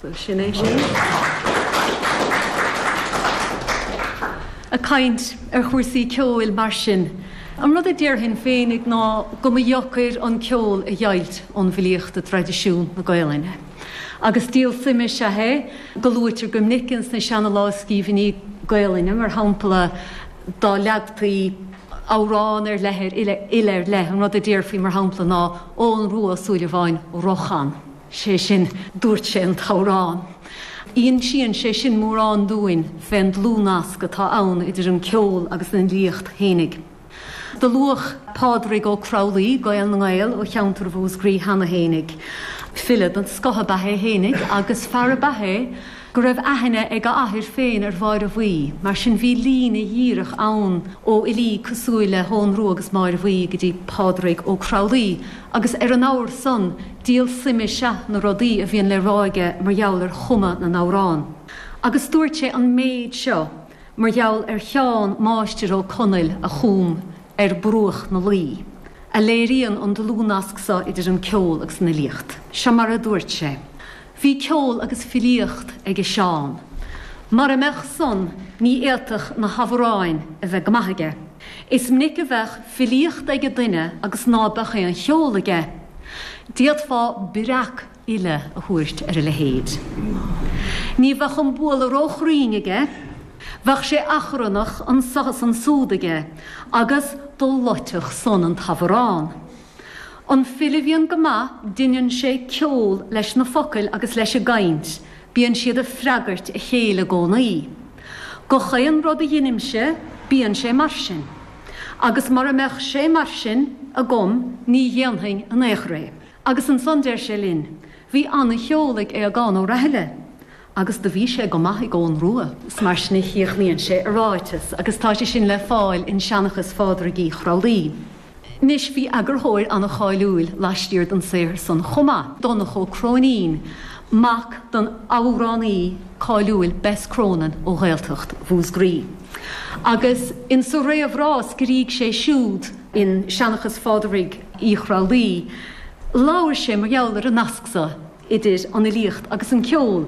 Bhuel, sin é sin. Ag caint ar chúrsaí ceoil mar sin, an rud a déarfainn féinig ná go mba dheacair an ceol a dheighilt ón bhfilíocht i dtraidisiún na Gaelainne. Agus díol suime is ea é go luaitear go minic ins na seana lámhscríbhinní Gaelainne, mar shampla, dá leagtaí amhrán ar leith ar fhile ar leith, an rud a déarfaí, mar shampla, ná 'Eoghan Rua Ó Súilleabháin ro chan' sé sin, dúirt sé an t-amhrán. Insíonn sé sin mórán dúinn fén dlúthnasc atá ann idir an ceol agus an fhilíocht fhéinig. Do luadh Pádraig Ó Crualaoi, Gael na nGael ó cheantar Mhúscraí cheana fhéinig, file den scoth ab ea é fhéinig agus fear ab ea é, go raibh aithne ag a athair féin ar Mháire Bhuí, mar sin bhí líne dhíreach ann ó fhilí cosúil le hEoghan Rua agus Máire Bhuí go dtí Pádraig Ó Crualaoi agus ar an abhar san, díol suime is ea na rudaí a bhíonn le rá aige mar gheall ar chumadh na n-amhrán. Agus dúirt sé an méid seo mar gheall ar Sheán Máistir Ó Conaill a chum 'Ar Bruach na Laoi', a léiríonn an dlúthnasc so idir an ceol agus an fhilíocht. Seo mar a dúirt sé. Bhí ceol agus filíocht aige Seán. Mara mbeadh san, ní fhéadfadh na hamhráin a bheith go maith aige. Is minic a bheadh filíocht aige duine agus ná beadh aon cheol aige. D'fhéadfá breacfhile a thabhairt ar a leithéid. Ní bheadh an bualadh róchruinn aige. Bheadh sé achrannach, anso agus ansúd aige, agus do loitfeadh san an t-amhrán. An file a bhíonn go maith deineann sé ceol leis na focail agus leis an gcaint, bíonn siad ag freagairt a chéile i gcónaí. Gach aon rud a dheinimse bíonn sé mar sin, agus mara mbeadh sé mar sin agam ní dhéanfainn in aon chor é. Agus ansan deir sé linn, Bhí ana-cheol ag Aogán Ó Rathaille. Agus do bhí sé go maith ag Eoghan Rua. Is mar sin a chríochnaíonn sé a ráiteas agus tá sé sin le fáil in Seanchas Phádraig Uí Chrualaoi. Anois, bhí eagarthóir an-cháiliúil laistiar den saothar san chomh maith, Donnchadh Ó Cróinín, mac don amhránaí cáiliúil Bess Cronin ó Ghaeltacht Mhúscraí. Agus in sa réamhrá a scrígh sé siúd, in Seanchas Phádraig Uí Chrualaoi, labhair sé mar gheall ar an nasc so idir an fhilíocht agus an ceol